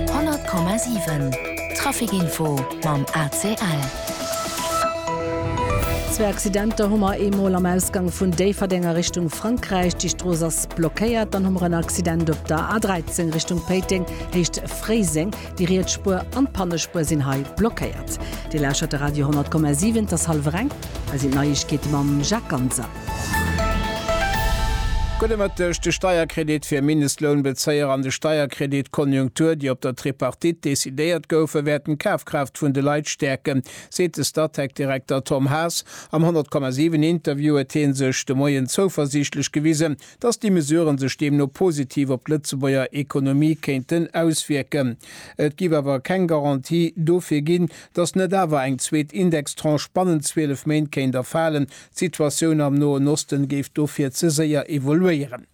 100,7 Trafic Info mam ACL. Zwee Accidenter hu mer, ee mol am Ausgang vun Déifferdeng a Richtung Frankräich, déi Strooss ass blockéiert. Dann hu mer en Accident op der A13 Richtung Péiteng, Héicht Fréiseng. Déi riets Spuer an d'Pannespuer sinn hei blockéiert. Dir lauschtert de Radio 100,7. Et ass hallef eng. Hei sinn d'Neiegkeete mam Jacques Ganser. Gudde Mëtteg, De Steierkredit fir Mindestlounbezéier an de Steierkredit Konjunktur, déi op der Tripartite decidéiert goufen, wäerten d'Kafkraaft vun de Leit stäerken, seet de Statec-Direkter Tom Haas. Am 100,7 Interview huet hie sech de Moien zouversiichtlech gewisen, datt déi Mesuren sech deemno positiv op d'Lëtzebuerger Ekonomie kéinten auswierken. Et géif awer keng Garantie dofir ginn, datt net awer eng zweet Indextranche bannent 12 Méint kéint erfalen, D'Situatioun am Noen Osten géif dofir ze séier evoluéieren.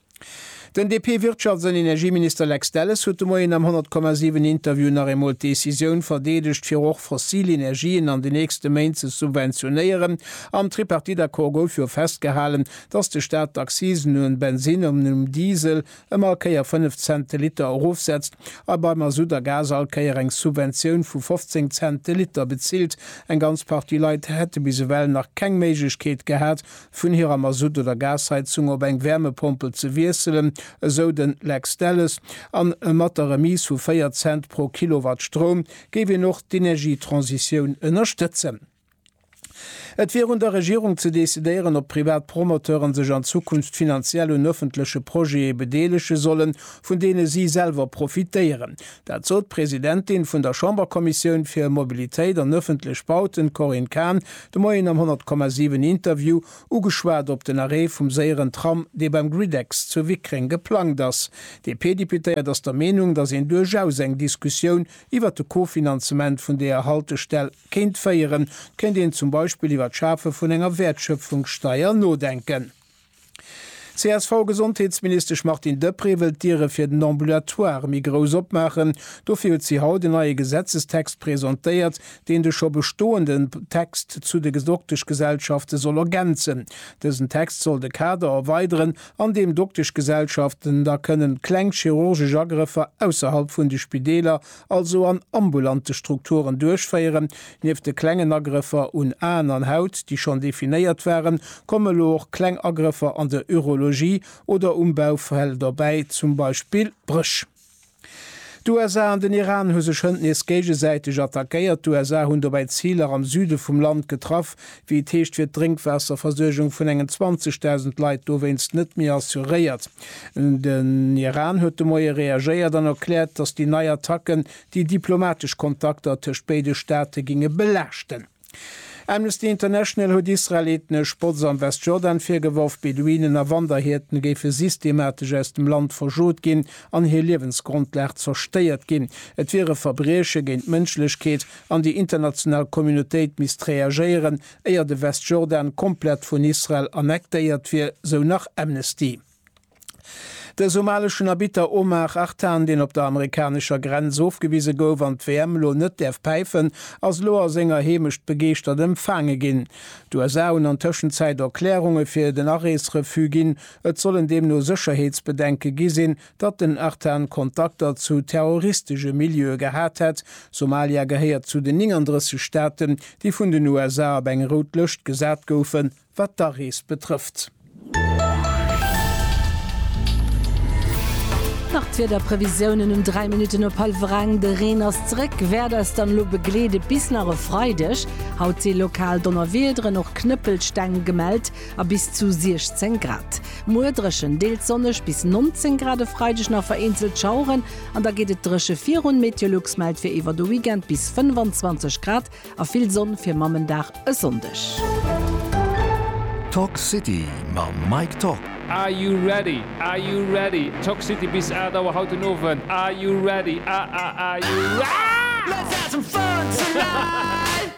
Den DP-Wirtschafts an Energieminister Lex Delles huet de Moien am 100, 7 Interview nach eemol d'Decisioun verdeedegt, fir och fossil Energien an den nächste Méint ze subventionéieren. Am Tripartite-Accord gouf jo festgehalen, datt de Staat d'Accisen um Bensinn an um Diesel, ëmmer e Kéier 5 Cent de Liter erofsetzt a bei Masutt a Gas all Kéier eng Subventioun vu 15 Cent de Liter bezilt. Eng ganz Partie Leit hätte bis ewell nach keng Méiglechkeet gehat, vun hirer Masutt oder Gasheizung op eng Wärmepompel ze wiesselen, esou de Lex Delles. A mat der Remise vu 4 Cent pro Kilowatt Stroum géif een och d'Energietransitioun ënnerstëtzen. Et wier un der Regierung ze decidéieren, ob privat Promoteuren sech an Zukunft finanziell un ëffentleche Projete bedeelege sollen, vun deene si selwer profitéieren. Dat sot d'Presidentin vun der Chamberkommissioun fir Mobilitéit an ëffentlech Bauten, Corinne Cahen, de Moien am 100,7 Interview. Ugeschwat op den Arrêt vum séieren Tram, dee beim Gridex zu Wickreng geplangt ass. D'DP-Deputéiert ass der Meenung, datt een duerchaus eng Diskussioun iwwert de Kofinanzement vun deeër Haltestell Kéint féieren, kéint een zum Beispill iwwer d'Schafe vun enger Wäertschöpfungssteuer nodenken. D'CSV-Gesondheetsministesch Martine Deprez wëll d'Diere fir den Ambulatoire méi grouss opmaachen. Dofir huet si haut en neie Gesetzestext presentéiert, deen de scho bestoenden Text zu de Dokteschgesellschafte soll ergänzen. Dësen Text soll de Kader erweideren, an deem Dokteschgesellschaften da kënnen kleng chirurgesch Agrëffer ausserhalb vun de Spideeler also an ambulante Strukturen duerchféieren. Nieft de klengen Agrëffer un Aen an Haut, déi schonn definéiert waren, kommen elo och kleng Agrëffer an der Urologie oder um Baufel dobäi, zum Beispill Bréch. D'USA an den Iran hu sech hënt nees géigesäiteg attackéiert. D'USA hunn dobäi Ziler am Süde vum Land getraff, Wéi et heescht, wier d'Drénkwaasserversuergung vun engen 20.000 Leit dowéinst net méi assuréiert. Den Iran huet de Moie reagéiert an erkläert, datt déi nei Attacken déi diplomatesch Kontakter tëscht béide Staate géinge belaaschten. Amnesty International huet Israel ethnesch Botz am Westjordan virgeworf. Beduinen a Wanderhierten géife systematesch aus dem Land verschot ginn an hir Liewensgrondlag zerstéiert ginn. Et wier e Verbrieche géint d'Mënschlechkeet, An déi international Communautéit misst reagéieren, éier de Westjordan komplett vun Israel annektéiert wier, sou nach Amnesty. De somaleschen Arbitter Omar Artan, deen op der amerikanescher Grenz ofgewise gouf an d'WM elo net däerf päifen, ass elo a senger Heemecht begeeschtert empfaange ginn. D'USA hunn an Tëschenzäit Erklärunge fir den Arees-Refus ginn. Et sollen deemno Sécherheetsbedenke gi sinn, datt den Artan Kontakter zu terroristesche Milieue gehat hätt. Somalia gehéiert zu den 39 Staaten, déi vun den USA op eng rout Lëscht gesat goufen, wat d'Arees betrëfft. Nach d'Wiederprevisiounen um 3 Minutten op hallwer eng, De Reen ass zeréck, wäert eis dann elo begleede bis nach e Freideg. Haut si lokal Donnerwiederen, och Knëppelsteng gemellt. a bis zu 16 Grad. Muer dréchen, deels sonneg bis 19 Grad, e Freideg nach vereenzelt Schaueren an da geet et dréche virun. Meteolux mellt fir iwwer de Weekend bis 25 Grad a vill Sonn fir Mammendag e Sonndeg. Toxcity mam Mike Top. Are you ready? Are you ready? Toxcity bis 8 Auer haut den Owend. Are you ready? Ah ah are you ready? Let's have some fun tonight!